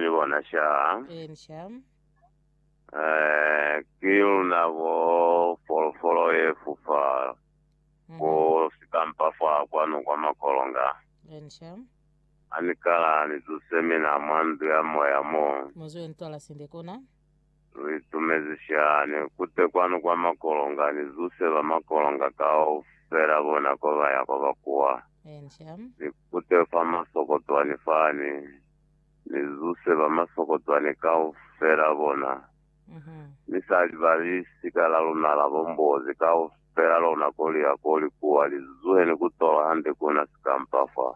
Ni bona shaa. Eeni shaa. Eh, ki luna bo folofolo ye fufa ko sikampa fa kwanu kwa makolonga. Eeni shaa. Ha ni kala ni zuse mina mwa ndu ya moya mo. Mu zwe ntwala sinde kona. Lu itumezi shaa. Ni kute kwanu kwa makolonga, ni zuse ba makolonga kaufela bona ko ba ya kwa ba kuwa. Eeni shaa. Ni kute fa masokotwani fani. Ni zuse ba masokocwani kaufela bona, mi sa li ba lisika la luna la bombozi kaufela lona koli ya koli kuwa li zuheni ku tola hande kuna sikampa fa.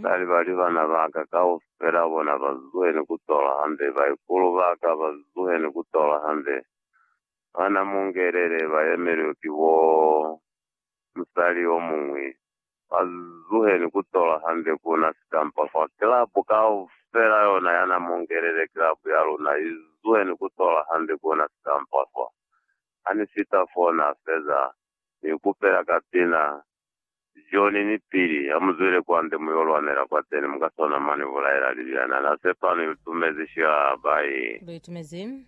Sa li ba li bana baka kaufela bona ba zuheni ku tola hande, baikulu baka ba zuheni ku tola hande, bana mungelele ba yemeliwe ki bo musali omuñwi. Ba zuheni kutola hande kuna sitampa kwa kilabu kaufela yona yana mungelele kilabu ya luna i zuheni kutola hande kuna sitampa fa. Hani fita fo na feza, ni kupela kapina, John ni Billy, hamuzwele kwande muyo lwanela kwateni muka sona mwa ni bulaela libyana. Na sepa ni lutumezi shilaba ye. Lu itumezi.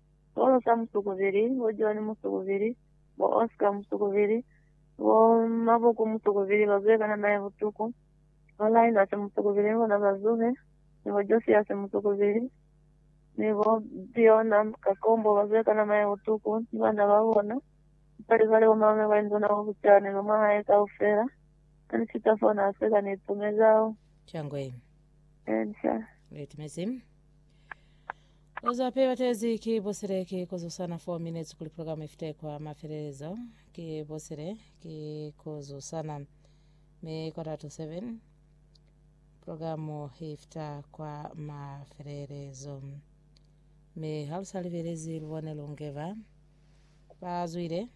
sikolo sa musukubili, bo John musukubili, bo Oscar musukubili, bo Mabuku musukubili, ba zuhe kana nae butuku, bo Linus musukubili ni bona ba zuhe, ni bo Josias musukubili, ni bo Bjorna Kakombo ba zuhe kana nae butuku, ni bana ba bona, ni pali zwale bo malume ba induna bo bucani no mwa hae kaufela, ha ni fita fo na seka ni itumezao. Shangwe. Encia. Ni itumezi. Oza pe batezi ki bosile ki kuzusana 4 minutes kuli program ifite kwa mafelelezo ki bosile ki kuzusana me quarter to 7 program ifita kwa mafelelezo me halusa libelezi lubone lungeva bazwile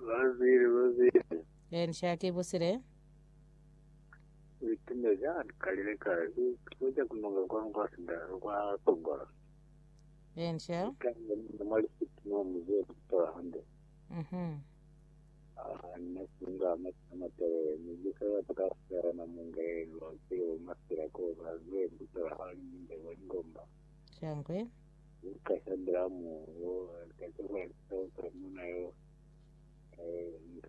Bazwile, bazwile. then shaki bosile Uitumezi ha ni kalile ka tuso ja kununga kwanu kwa sindalo kwa Tongola. Enca. Ikanga ni mwa lisiti mwa muzi wa Kutola hande. Mhm. Ah, nna singa amata matele mujisa ya pakasela na munga yenu wa kilo masila ko ba zwe Kutola ha ni minde wa lingomba. Shangwe. Ukasambila mu wo kachoka sa utamuna yo. Eh, ndo.